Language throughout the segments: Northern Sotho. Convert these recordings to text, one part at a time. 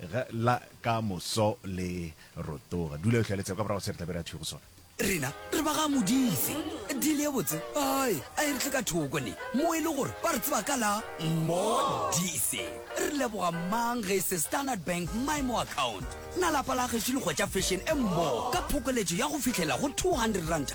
Ge la ka moso le rotoga. Dula ehlwa le tsebe ka morago se re tla be re a thwi go sona. Rena re ba ga Modife. Deal ye botse ae a e re tle ka thoko ne mo e le gore ba re tseba ka la Modife. Re leboga mang ge e se Standard Bank Maimo Account. Na lapa la gešo le hwetša fashion e mmogo ka phokoletšo ya go fihlela go 200 ranta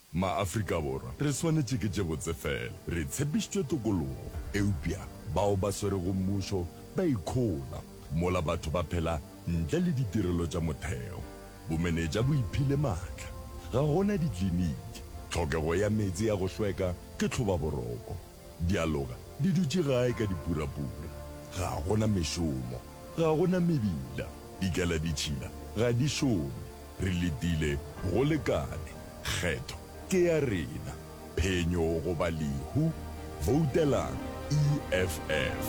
MaAfrika Borwa re swanetše ke tše botse fela. Re tshepišitšwe tokologo, eupša bao ba swerego mmušo ba ikhola mola batho ba phela ntle le ditirelo tša motheo. Bomenetša bo iphile matla. Ga go na dikliniki. Tlhokego ya meetse ya go hlweka ke tlhobaboroko. Dialoga di dutše gae ka dipurapura. Ga go na mešomo. Ga go na mebila. Dikaladitšhila ga di šome. Re letile go lekane. Kgetho ke ya rena. Phenyo goba lehu. Voutelang EFF.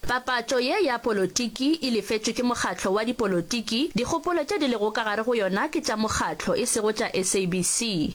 Papatšo ye ya polotiki e lefetšwe ke mokgatlo wa dipolotiki. Dikgopolo tše di lego ka gare go yona ke tša mokgatlo, e sego tša SABC.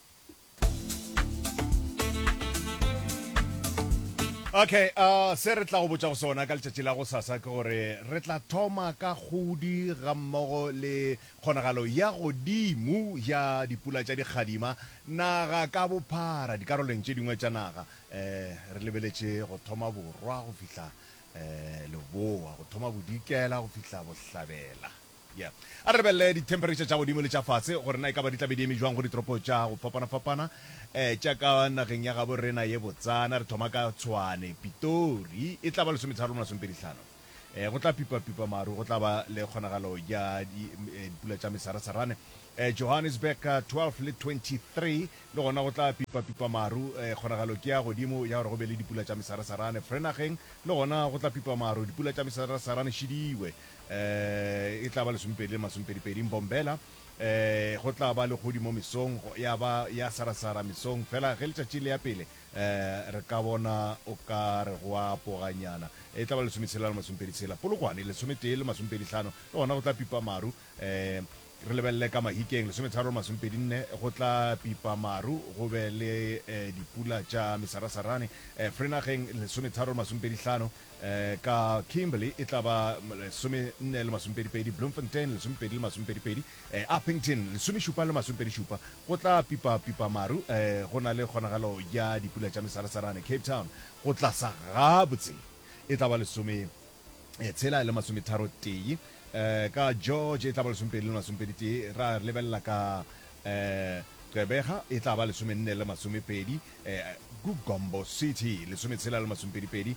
Okay, uh, se re tla go botša go sona ka letšatši la go sasa ke gore re tla thoma ka kgodi ga mmogo le kgonagalo ya godimo ya dipula tša dikgadima naga ka bophara dikaroleng tše dingwe tša naga eh, re lebeletše go thoma borwa go fihla eh, leboa go thoma bodikela go fihla bohlabela Ya. A re lebelele dithemphereitšha tša godimo le tša fase gore na e ka ba di tla be di eme bjang go ditoropo tša go fapana-fapana tša ka nageng ya gabo rena ye botsana. Re thoma ka Tshwane, Pitori e tla ba lesometharo le masomepedihlano. Go tla pipa-pipa maru, go tla ba le kgonagalo ya dipula tša mesarasarane. Johannesburg, 12 le 23 le gona go tla pipa-pipa maru, kgonagalo ke ya godimo ya gore go be le dipula tša mesarasarane. Vereenaging le gona go tla pipa maru, dipula tša mesarasarane šidiwe. eh, e tla ba lesomepedi le masomepedipedi Mbombela, eh, go tla ba legodimo mesong, ya ba ya sarasara mesong, fela ge letšatši le ya pele, eh, re ka bona o ka re go a poganyana, e tla ba lesometshela le masomepedi tshela Polokwane, lesometee le masomepedi hlano, le gona go tla pipa maru, eh, re lebelele ka Mahikeng, lesometharo le masomepedi nne, go tla pipa maru, go be le eh, dipula tša mesarasarane, eh, Frenageng, lesometharo le masomepedi hlano, Ka Kimberley e tla ba lesomenne le masomepedipedi, Bloemfontein lesomepedi le masomepedipedi, Upington lesomešupa le masomepedišupa. Go tla pipapipa maru go na le kgonagalo ya dipula tša mesarasarane. Cape Town go tlasa gabotse e tla ba lesometshela le masometharotee. Ka George e tla ba lesomepedi le masomepeditee. Ra lebelela ka Gqeberha e tla ba lesomenne le masomepedi. Gumbo City, lesometshela le masomepedipedi,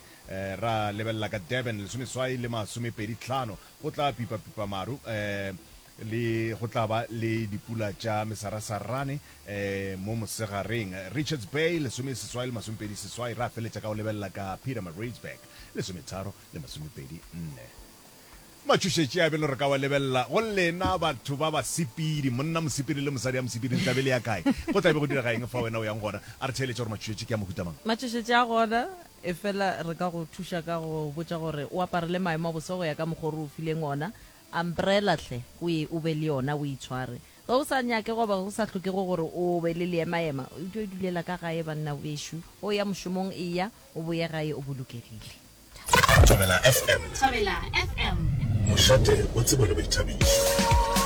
ra lebelela ka Durban, lesomeswai le masomepeditlhano, go tla pipapipa maru le go tla ba le dipula tša mesarasarane mo mosegareng. Richards Bay, lesomeseswai le masomepediseswai, ra feletša ka go lebelela ka Pietermaritzburg, lesometharo le masomepedi nne. Matšhošetše a bjalo re ka wa lebelela go lena batho ba basepedi, monna mosepedi le mosadi ya mosepedi. Le tla be le ya kae? Go tla be go direga eng fa wena o yang gona? A re theeletše gore matšhošetše ke a mohuta mang. Matšhošetše a gona, efela re ka go thuša ka go go botša gore o aparele maemo a boso go ya ka mokgwa o re o fileng ona. Umbrella hle, o ye o be le yona, o e tshware. Ge o sa nyake goba go sa hlokege gore o be le leemaema, o tlo idulela ka gae, banna bešo. Ge o ya mošomong, eya o boye gae o bolokegile. Thobela FM. Thobela FM. Mošate o tsebele boithabišo.